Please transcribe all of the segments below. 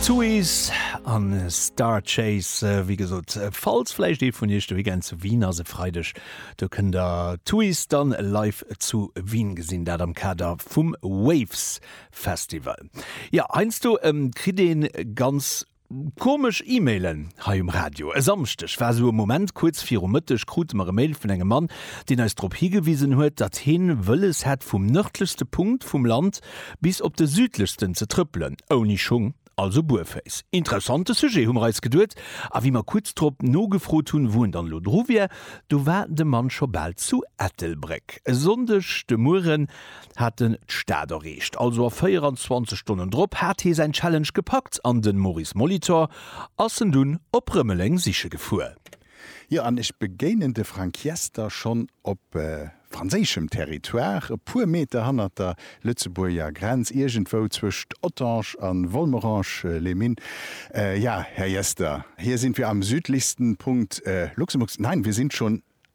Suez an Star Chase, wéi gesot, falls vläicht ee vun iech de Weekend zu Wien ass, e Freideg do kënnt der d'Suez dann live zu Wien gesinn, dat am Kader vum Waves Festival. Jo, heiansdo kritt ee ganz Komesch E-Mailen hei um Radio. E Samschdeg war esou e Moment, kuerz viru Mëtteg krute mer e Mail vun engem Mann, deen eis drop higewisen huet, datt heen wëlles hätt vum nërdlechste Punkt vum Land bis op de südlechsten ze trëppelen, ouni Schung, also buerféiss. Interessante Sujet, hu mer eis geduet, a wéi mer kuerz drop nogefrot hunn, wou en dann elo dru wier, do war de Mann scho bal zu Ettelbréck. E Sonndeg de Mueren hat en d'Stad erreecht. Also a 24 Stonnen drop hat hee säin Challenge gepackt an den Maurice Molitor ass en dunn op Rëmeleng siche gefuer. Jo, an ech begéinen de Frank Jester schonn op franséischem Territoire, e puer Meter hannert der Lëtzebuerger Grenz, iergendwou zwëscht Ottange a Volmerange-les-Mines. Ja, Här Jester, hier sind wir am südlichsten Punkt Luxemburgs. Nein, wir sind schon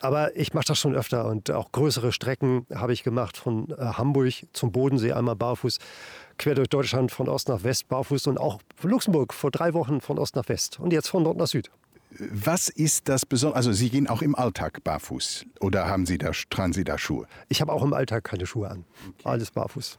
Aber ich mach das schon öfter und auch größere Strecken habe ich gemacht, von Hamburg zum Bodensee einmal barfuß, quer durch Deutschland von Ost nach West barfuß und auch Luxemburg vor drei Wochen von Ost nach West und jetzt von Nord nach Süd. Was ist das Besondere, also Sie gehen auch im Alltag barfuß oder haben Sie da, tragen Sie da Schuhe? Ich habe auch im Alltag keine Schuhe an, alles barfuß.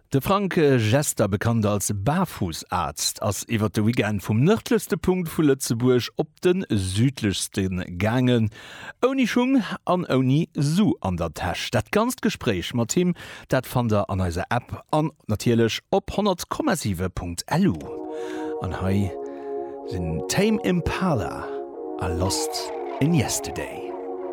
De Frank Jester, bekannt als Baarfussarzt, ass iwwert de Weekend vum nërdlechste Punkt vu Lëtzebuerg op de südlechste gaangen, ouni Schung an ouni Su an der Täsch. Dat ganzt Gespréich mat him, dat fannt der an eiser App an natierlech op 100,7.lu. An hei sinn Tame Impala a Lost in Yesterday.